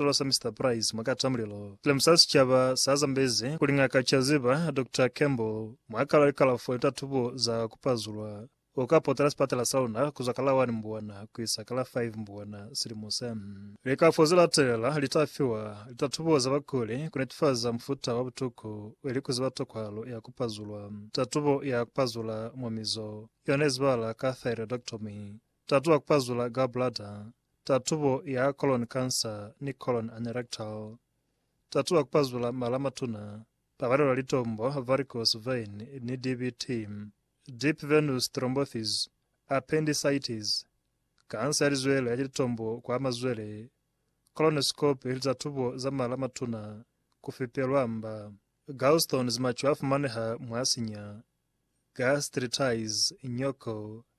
Sicaba sa Mister Price mwa kata mulilo. Silamu sa sicaba sa zambezi kuli ngaka ca ziba Doctor Campbell mwa kala likalafo litatubo za kupazulwa. U ka potela sipatela sa luna kuzwa ka la 1 Mbwana kuisa ka la 5 Mbwana silimo se. Likalafo ze latelela li ta fiwa litatubo za bakuli ku netifaza mufuta wa butuku ili ku ziba tokwahalo ya kupazulwa. Tatubo ya kupazula mwa mizo yona izibala ka thyroidectomy. Tatu wa kupazula gallbladder, tatubo ya colon cancer ni colon anerectal. Tatu wa kupazula mala matuna, pabalelo ya litombo, varicose vein, ni DVT, deep venous thrombosis, appendicitis, kansa ya lizwele ya litombo kwa mazwele, colonoscopy li tatubo za mala matuna, kufipelwa mba. Gallstones maco a fumaneha mwa sinya, gastritis, nyoko,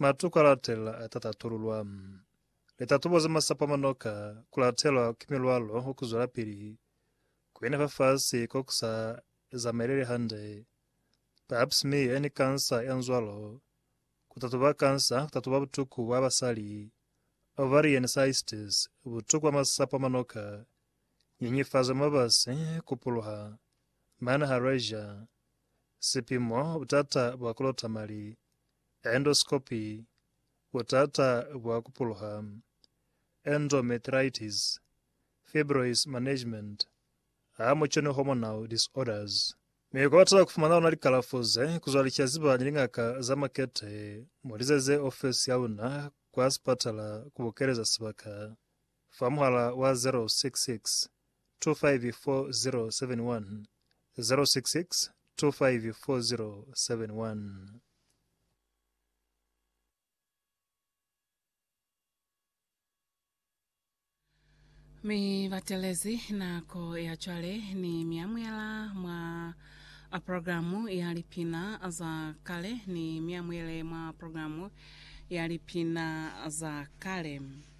Matuku a latelela a ta tatululwa. Litatubo za masapo a manoka ku latelwa ki milwalo wa ku zwelapili ku ina fafasi ko ku sa zamaeleli hande, pap smear ni kansa ya nzwalo, ku tatuba kansa, ku tatuba butuku bwa basali, ovarian cysts, butuku bwa masapo a manoka, nyenyefazo ya mabasi, ku puluha, mane ha Rayger. sipimo, butata bwa kulota mali, endoscopy, butata bwa kupuluha, endometritis, fibroids management, hamuconi hormonal disorders. Mi kubatela kufumana luna likalafo ze kuzwa licaziba ni lingaka za makete, mulizeze ofesi yaluna kwa sipatala kubukeleza sibaka. Fa muhala wa 0662540710. 0662540710. Mi batelezi nako ya cwale ni miamuela mwa programu ya lipina za kale, ni miamuele mwa programu ya lipina za kale.